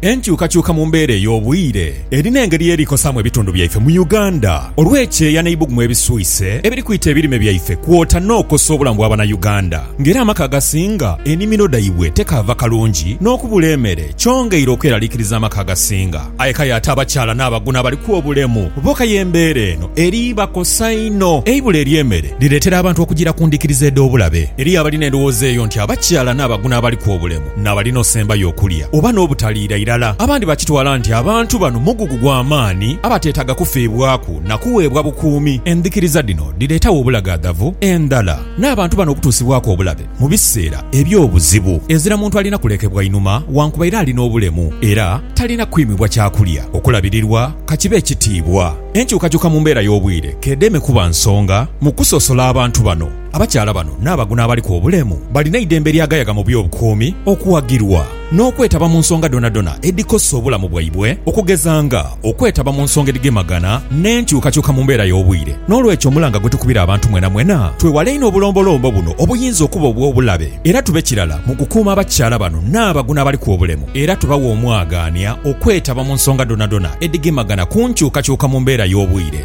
Enkyukakyuka mu mbeera ey'obwire erina engeri eri kosaamu ebitundu byaife mu Uganda olw'ekyeya n'eibugumu ebiswise ebiri kwita ebirime byaife kwota n'okosa obulamu bwa Banauganda nga era amaka agasinga enimiro dhaibwe tekaava kalungi n'okubula emere kyongeire okweralikiriza amaka agasinga aye kale ate abakyala n'abaguna abaliku obulemu bo kaye embeera eno eri bakosa inho. Eibula ery'emere lireetera abantu okugira ku ndhikiriza edh'obulabe. Eriyo abalina endhowooza eyo nti abakyala n'abaguna abaliku obulemu N'abali n'osembayo okulya oba n'obutaliira irala, abandi bakitwala nti abantu bano mugugu gwa maani abateetaaga kufiibwaku na kuweebwa bukuumi. Endhikiriza dhino dhireetawo obulagaadhavu endhala n'abantu bano okutuusibwaku obulabe mu biseera eby'obuzibu. Ezira muntu alina kulekebwa inhuma wankubaire ali n'obulemu era talina kwimibwa kyakulya, okulabirirwa ka kibe ekitiibwa. Enkyukakyuka mu mbeera y'obwire k'edeme kuba nsonga mu kusosola abantu bano. Abakyala bano n'abaguno abaliku obulemu balina eidembe lyagayaga mu by'obukuumi, okuwagirwa, n'okwetaba mu nsonga dhonadhona edhikosa obulamu bwaibwe okugeza nga okwetaba mu nsonga edhigemagana n'enkyukakyuka mu mbeera y'obwire. N'olwekyo omulanga gwe tukubira abantu mwenamwena twewale inho obulombolombo buno obuyinza okuba obw'obulabe era tube kirala mu kukuuma abakyala bano n'abaguno abaliku obulemu era tubawe omwagaanya okwetaba mu nsonga dhonadhona edhigemagana ku nkyukakyuka mu mbeera y'obwire.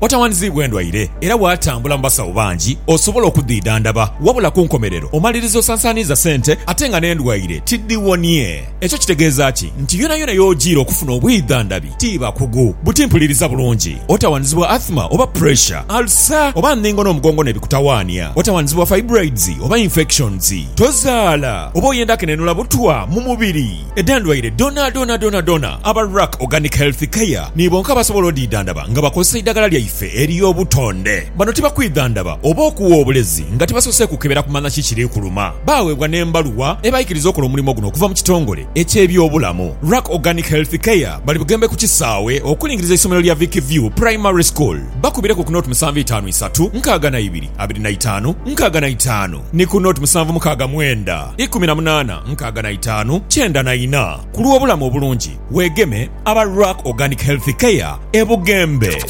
Otawandiziibwa endwaire era bw'atambula mu basawo bangi osobola okudhidhandaba wabula ku nkomerero omaliriza osansaaniiza sente ate nga n'endwaire tidhiwonie. Ekyo kitegeeza ki? Nti yonayona y'ojiira okufuna obwidhandhabi ti bakugu. Buti mpuliriza bulungi. Otawandiziibwa Athma oba Pressure, Ulcer oba Ndhingo n'omugongo n'ebikutawaania. Otawandiziibwa Fibroids oba Infections. Tozaala oba oyenda kenenula butwa mu mubiri. Edh'endwaire dhoonadhoona dhoonadhoona, aba Ruck Organic Health Care ni bonka abasobola odhidhandhaba nga bakozesa eidhagala lyaife ery'obutonde. Bano tibakwidhandhaba oba okuwa obulezi nga tibasoose kukebera kumanya ki kiri kuluma. Baaweebwa n'embaluwa ebaikiriza okola omulimo guno okuva mu kitongole eky'ebyobulamu. Ruck Organic Health Care bali Bugembe ku kisaawe okulingiriza eisomero lya Vic View Primary School. Bakubireku ku naught musanvu itaanu isatu, nkaaga na ibiri, abiri na itaanu, nkaaga na itaanu. Ni ku noti musanvu mukaaga mwenda ikumi na munaana nkaaga na itaanu kyenda na ina ku lw'obulamu obulungi weegeme aba Ruck Organic Healthy Care e Bugembe.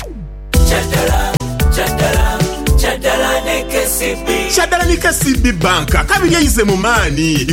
Kyaddala ni KCB Bank, kabiri eize mu maani.